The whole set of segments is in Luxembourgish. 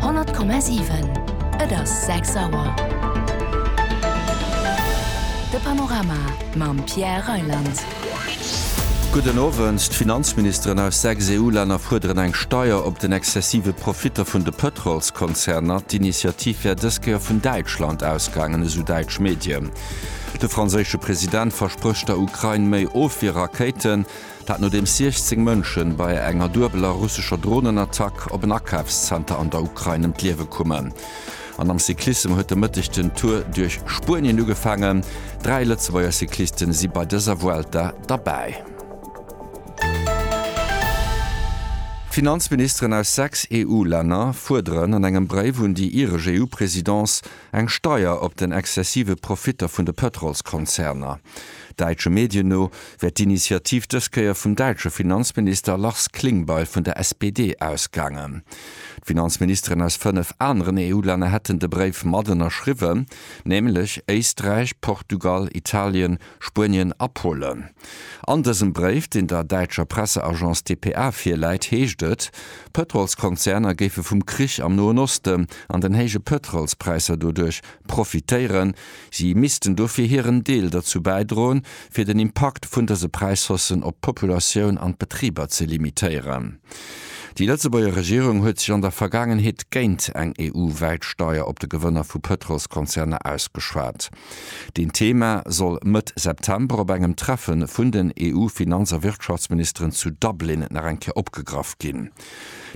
100,7 Et ass 6 Auer. De Panorama mam Pierre Reyland. Gudden Owend. D'Finanzministeren aus 6 EU-Länner fuerderen eng Steier op den exzessive Profitter vun de Pëtrolskonzerner. D'Initiativ wär dës Kéier vun Däitschland ausgaangen, esou däitsch Medien. De franséische President versprécht der Ukrain méi Ofwierrakéiten. Dat nodeems 16 Mënschen bei enger duebeler russescher Dronenattack op en Akafszenter an der Ukrain ëm d'Liewe kummen. An am Cyclissem huet de Mëtteg den Tour duerch Spuenien ugefaangen. Dräi Lëtzebuerger Cyclisten si bei dëser Vuelta derbäi. Finanzministeren aus sechs EU-Länner fuerderen an engem Bréif un déi iresch EU-Presidence, Eng Steier op den exzessive Profitter vun de Pëtrolskonzerner. Däitsche Medien no wär d'Initiativ dës Kéier vum däitsche Finanzminister Lars Klingbeil vun der SPD ausgaangen. D'Finanzministeren aus fënnef aneren EU-Länner hätten de Bréif mat ënnerschriwwen, nämlech Éisträich, Portugal, Italien, Spuenien a Polen. An dësem Bréif, deen der däitscher Presseagence dpa virläit, heescht et, Pëtrolskonzerner géife vum Krich am Noen Osten an den héije Pëtrolspräisser doduerch profitéieren. Si missten dofir hiren Deel derzou bäidroen, fir den Impakt vun dëse Präishaussen op d'Populatioun an d'Betriber ze limitéieren. Déi Lëtzebuerger Regierung huet sech an der Vergaangenheet géint eng EU-wäit Steier op de Gewënner vu Pëtrolskonzerner ausgeschwat. Deen Thema soll Mëtt September op engem Treffe vun den EU-Finanz a Wirtschaftsministeren zu Dublin nach eng Kéier opgegraff ginn.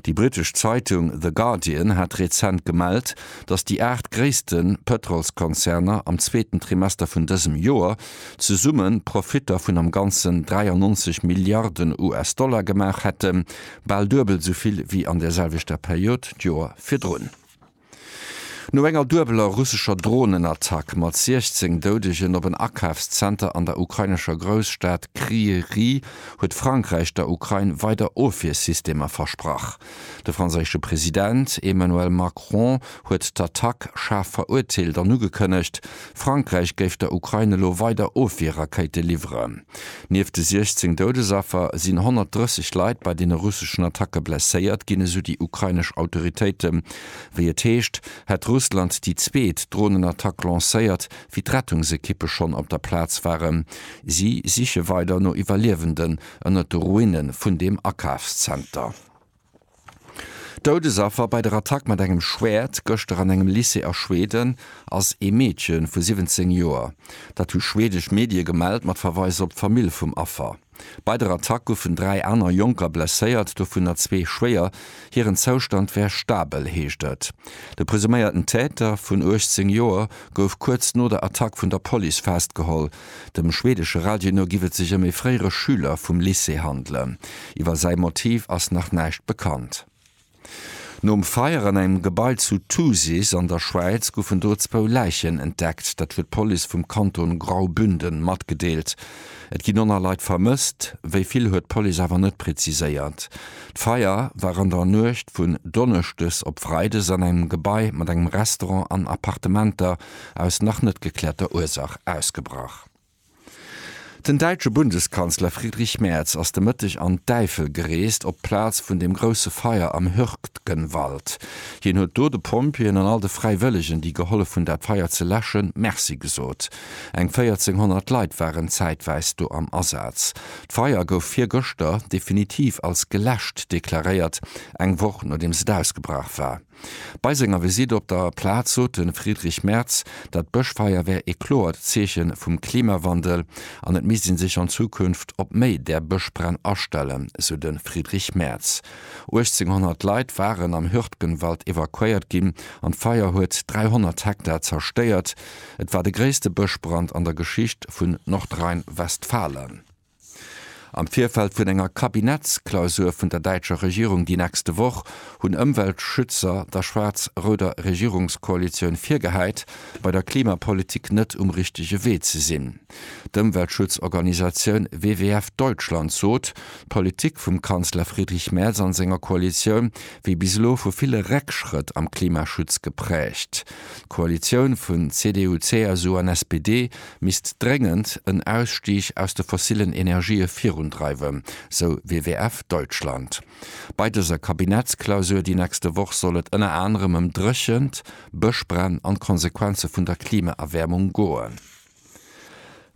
Déi britesch Zeitung The Guardian hat rezent gemellt, datt déi aacht gréisste Pëtrolskonzerner am zweeten Trimester vun dësem Joer zesumme Profitter vun am Ganzen 93 Milliarden US-Dollar gemaach hätten, bal duebel esou vill wéi an der selwechter Period d'Joer virdrun. No enger duebeler russescher Dronenattack mat 16 Doudegen op en Akafszenter an der ukrainescher Grousstad Kryïryi huet Frankräich der Ukrain weider Ofwiersystemer versprach. De franséische President Emmanuel Macron huet d'Attack schaarf verurteelt an ugekënnegt, Frankräich géif der Ukrain elo weider Ofwierrakéite liwweren. Nieft de 16 Doudesaffer sinn 130 Leit bei deene russeschen Attacke blesséiert ginn, esou déi ukrainesch Autoritéite. Wéi et heescht, hätt Russland déi zweet Dronenattack lancéiert, wéi d'Rettungsekippe schonn op der Plaz waren. Si siche weider no Iwwerliewenden ënnert de Ruine vun deem Akafszenter. Doudesaffer bei der Attack mat engem Schwäert gëschter an engem Lycée a Schweden ass ee Meedche vu 17 Joer. Dat hu schweedesch Medie gemellt, mat Verweis op d'Famill vum Affer. Bei der Attack goufen dräi aner Jonker blesséiert, dovunner zwee schwéier. Hiren Zoustand wär stabel, heescht et. De presuméierten Täter vun 18 Joer gouf kuerz no der Attack vun der Police festgeholl. Dem schweedesche Radio no giff et sech ëm ee fréiere Schüler vum Lycée handelen. Iwwer säi Motiv ass nach näischt bekannt. Nom Feier an engem Gebai zu Thusis an der Schwäiz goufen do zwou Läichen entdeckt. Dat huet d'Police vum Kanton Graubünden matgedeelt. Et ginn 100 Leit vermësst, wéi vill huet d'Police awer net preziséiert. D'Feier war an der Nuecht vun Donneschdes op Freides an engem Gebai mat engem Restaurant an Appartementer aus nach net geklärter Ursach ausgebrach. Den däitsche Bundeskanzler Friedrich Merz ass de Mëtteg an d'Äifel gereest, op d'Plaz vun dem grousse Feier am Hürtgenwald. Hien huet do de Pompjeeën an all de Fräiwëllegen, déi gehollef hunn, dat Feier ze läschen, Merci gesot. Eng 1.400 Leit waren zäitwäis do am Asaz. D'Feier gouf virgëschter definitiv als geläscht deklaréiert, eng Woch nodeems et ausgebrach war. Bei senger Visitt op der Plaz sot de Friedrich Merz, dat Bëschfeier wär ee kloert Zeeche vum Klimawandel an et misst ee sech an Zukunft op méi där Bëschbränn astellen, sou de Friedrich Merz. 1.800 Leit waren am Hürtgenwald evakuéiert ginn an d'Feier huet 300 Hektar zerstéiert. Et war de gréisste Bëschbrand an der Geschicht vun Nordrhein-Westfalen. Am Virfeld vun enger Kabinettsklausur vun der däitscher Regierung déi nächste Woch hunn Ëmweltschützer der schwaarz-rouder Regierungskoalitioun virgehäit, bei der Klimapolitik net um richtege Wee ze sinn. D'Ëmweltschutzorganisatioun WWF Deutschland sot, d'Politik vum Kanzler Friedrich Merz an senger Koalitioun wier bis elo vu ville Réckschrëtt am Klimaschutz gepräägt. D'Koalitioun vun CDU, CSU an SPD misst dréngend en Ausstig aus de fossillen Energië virundreiwen, sou WWF Deutschland. Bei dëser Kabinettsklausur déi nächste Woch soll et ënner anerem ëm Dréchent, Bëschbränn an d'Konsequenze vun der Klimaerwäermung goen.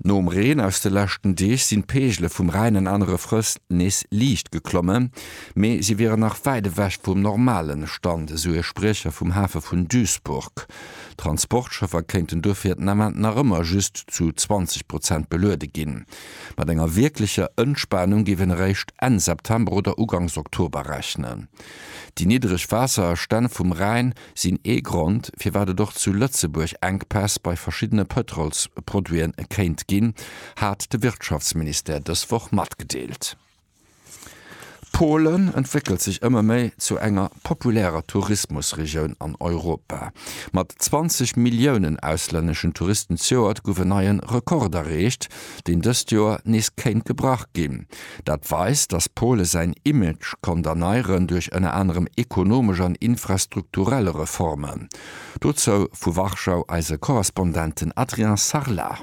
Nom Reen aus de leschten Deeg sinn d'Peegele vum Rhäin an anere Flëss nees liicht geklommen, mee si wieren nach wäit ewech vum normalen Stand, esou e Spriecher vum Hafe vun Duisburg. D'Transportschëffer kéinten dofir den Ament nach ëmmer just zu 20 Prozent beluede ginn. Mat enger wierklecher Entspanung géif een eréischt Enn September oder Uganks Oktober rechnen. Déi niddreg Waasserstänn vum Rhäin sinn ee Grond, firwat et och zu Lëtzebuerg Enkpäss bei verschiddene Pëtrolsproduite kéint ginn, hat de Wirtschaftsministère dës Woch matgedeelt. Polen entwéckelt sech ëmmer méi zu enger populärer Tourismusregioun an Europa. Mat 20 Milliounen auslänneschen Touristen d'Joert gouf en neien Rekord erreecht, deen dëst Joer nees kéint gebrach ginn. Dat weist, datt Pole säin Image konnt erneieren duerch ënner anerem ekonomesch an infrastrukturell Reformen. Dozou vu Warschau eise Korrespondenten Adrien Sarlat.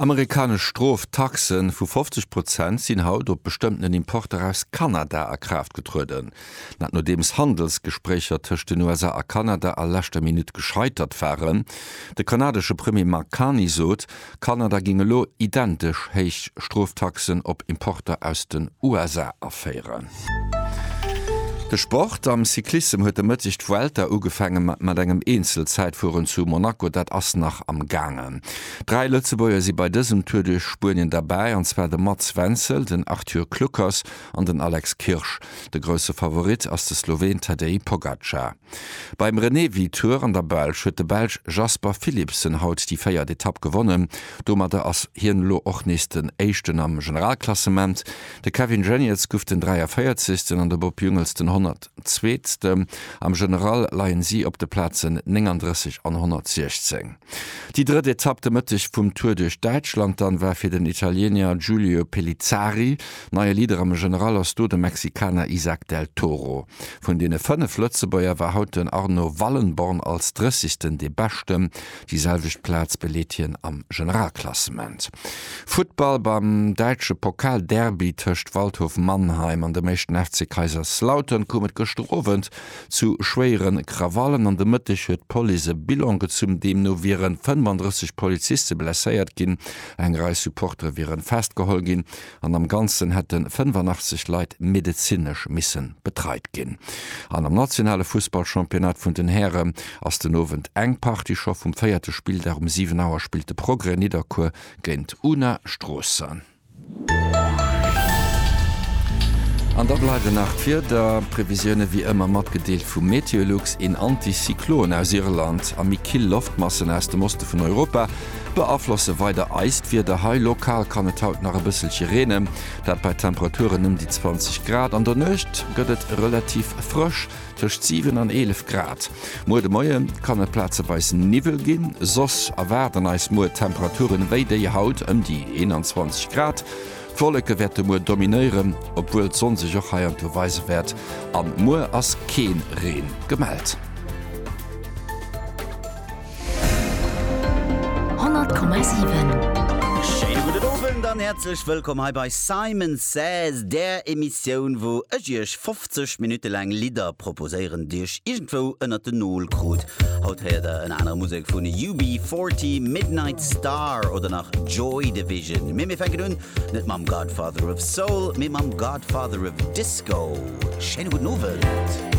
Amerikanesch Stroftaxe vu 50 Prozent sinn haut op bestëmmten Importer aus Kanada a Kraaft getrueden. Dat nodeems Handelsgespréicher tëscht den USA a Kanada a leschter Minutt gescheitert waren. De kanadesche Premier Mark Carney sot, Kanada géing elo identesch héich Stroftaxen op Importer aus den USA aféieren. De Sport, Am Cyclissem huet e Mëtteg d'Vuelta ugefaangen mat engem Eenzelzäitfueren zu Monaco. Dat ass nach am gaangen. Dräi Lëtzebuerger si bei dësem Tour duerch Spuenien derbäi, an zwar de Mats Wenzel, den Arthur Kluckers an den Alex Kirsch. De grousse Favorit ass de Sloween Tadej Pogacar. Beim Renewi-Tour an der Belsch huet de Belsch Jasper Philipsen haut déi véiert Etapp gewonnen. Domadder ass hien elo och nees den Éischten am Generalklassement. De Kevin Geniets guff den 43. an de Bob Jungels den 100. Zweetste. Am General leien si op de Plazen 39 an 116. Déi drëtt Etapp de Mëtteg vum Tour duerch Däitschland dann war fir den Italienier Giulio Pellizzari. Neie Leader am General ass do de Mexikaner Isak Del Toro. Vun deene 5 Lëtzebuerger war haut den Arno Wallenborn als 30. dee Beschten. Déi selwecht Plaz beleet hien am Generalklassement. Futtball, Beim däitsche Pokalderby tëscht Waldhof Mannheim an dem éischten FC Kaiserslautern koum et gëschter Owend zu schwéiere Krawallen. An de Mëtteg huet d'Police e Bilan gezunn, deemno wiere 35 Poliziste blesséiert ginn, eng Rei Supportere wiere festgeholl ginn an am Ganzen hätte 85 Leit medezinesch misse betreit ginn. An am nationale Fussballchampionnat vun den Häre ass den Owend eng Partie scho vum véierte Spilldag. Um 7 Auer spillt de Progrès Nidderkuer géint Una Stroossen. An da bleiwen nach d'Wiederprevisioune wéi ëmmer matgedeelt vum MeteoLux. Een Anticyclon aus Irland a méi kill Loftmassen aus dem Oste vun Europa Beaflosse weider eist Wieder hei. Lokal kann et haut nach e bësselche reenen, dat bei Temperaturen ëm déi 20 Grad. An der Nuecht gëtt et relativ frësch, tëscht 7 an 11 Grad. Muer de Moie kann et plazeweis Niwwel ginn, soss erwaarden eis muer Temperature wéi déi haut, ëm déi 21 Grad. D'Wolleke wäerte muer dominéieren, obwuel d'Sonn sech och hei an do weise wäert. An muer ass kee Reen gemellt. 100,7. Schéine gudden Owend an häerzlech wëllkomm hei bei Simon Says, där Emissioun, wou ech iech 50 Minutte laang Lidder proposéieren, déi ech iergendwou ënnert den Nol krut. Haut héiert der ënner anerem Musek vun UB40, Midnight Star oder nach Joy Division. Mee mir fänken un, net mam Godfather of Soul, mee mam Godfather of Disco. Schéine gudden Owend.